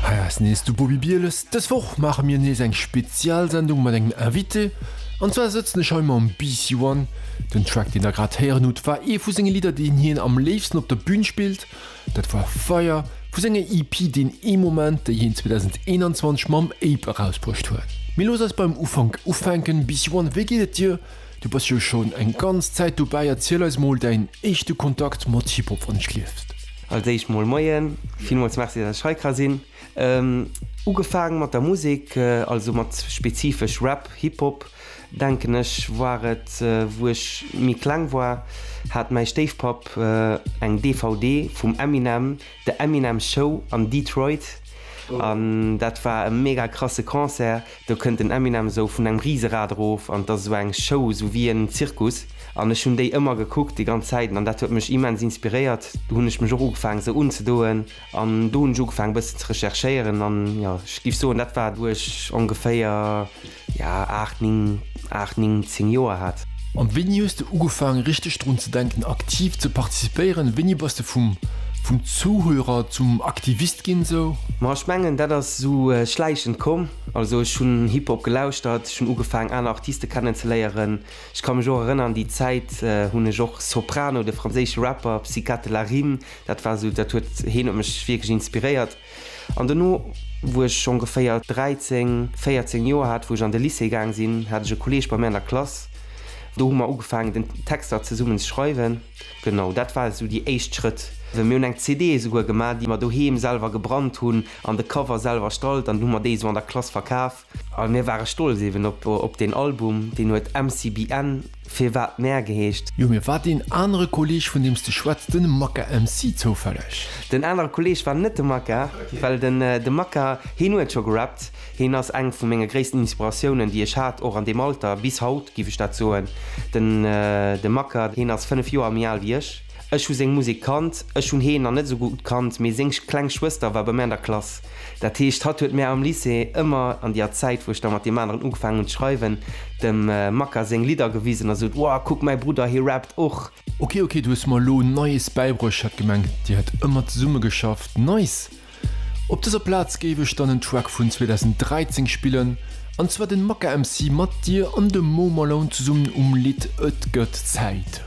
Hei ass nees de Bobi Bieles. Dës Woch maache mir nees eng Spezialsendung mat engem Invité. An zwar sëtzen ech hei mam BC One. Den Track deen der grad héieren hutt war ee vu senge Lidder deen hien am léifsten op der Bün spillt. Dat war Fire vu senger EP Deen ee Moment déi hien 2021 mam Ape erausbruecht huet. Mee looss eis beim Ufank ufänken. BC One, wéi geet et dir? Du bass jo schon eng ganz Zäit dobäi, erziel eis mol däin éischte Kontakt mat Hip-Hop wann ech lieft. Als éischt mol Moien, villmools Merci dass ech hei ka sinn. Ugefaang mat der Musek, also mat spezifesch Rap, Hip-Hop, denken ech war et wou ech méi kleng war, hat mäi Stéifpapp eng DVD vum Eminem, The Eminem Show an Detroit, an dat war e mega krasse Concert, Do kënnt den Eminem esou vun engem Riserad erof an et ass esou eng Show, esou wéi en Zirkus an ech hunn déi ëmmer gekuckt, déi ganz Zäiten an dat huet mech immens inspiréiert. Do hunn ech mech och ugefaangen esou unzedoen an do hunn ech ugefaangen e bëssen ze recherchéieren an jo, ech géif soen dat war wou ech ongeféier jo 8, 9. 8, 9, 10 Joer hat. An wéini hues de ugefaangen richteg drun ze denken aktiv ze participéieren? Wéini bass de vum vum Zuhörer zum Aktivist ginn sou? Ma ech mengen dat ass sou schläichend komm. Also ech hunn Hip-Hop gelauschtert, ech hunn ugefaangen aner Artiste kennen ze léieren. Ech ka mech och erënnern déi Zäit hunn ech och Soprano, de franséische Rapper Psykate Larime, dat war sou dat huet heen huet mech wierklech inspiréiert. An dono, wou ech ongeféier 13, 14 Joer hat, wou ech an de Lycée gaang sinn, hat ech e Kolleeg bei mir an der Klass. Do hu mer ugefaangen, den Texter zesummen ze schreiwen. Genau, dat war esou déi éischt Schrëtt. Mir hunn eng CD esouguer gemaach, déi mer doheem selwer gebrannt hunn an de Cover selwer erstallt an hu mer déi esou an der Klass verkaf. A mir ware stolz eben op deen Album, deen huet MCBN, Firwat Mär geheescht. Jo, mee war deen anere Kolleeg, vun deem s de schwätz, de Maka MC zoufälleg? Den anere Kolleeg war net de Maka, well de Maka, heen huet scho gerappt. Heen ass eng vu menge gréissten Inspiratiounen, déi ech hat, och an deem Alter, bis haut, géif ech dat soen. De Maka, heen ass fënnef Joer méi al wéi ech. Ech hu seng Musek kannt. Ech hunn heen nach net esou gutt kannt, mee seng kleng Schwëster war bei mär an der Klass. Dat heescht, hatt huet mär am Lycée ëmmer, an déer Zäit, wou ech da mat deem aneren ugefaangen hun z'schreiwen, dem Makka séng Lidder gewisen a sot, Wow, kuck, mäi Brudder, hie rappt och! Ok, ok, du hues mer elo Neies bäibruecht, ech hat gemengt, dir hätt ëmmer zesumme geschafft. Nice! Op dëser Plaz géif ech dann en Track vun 2013 spillen, an zwar den Makka MC mat dir an dem Mo Malone zesummen um Lidd Et gëtt Zäit.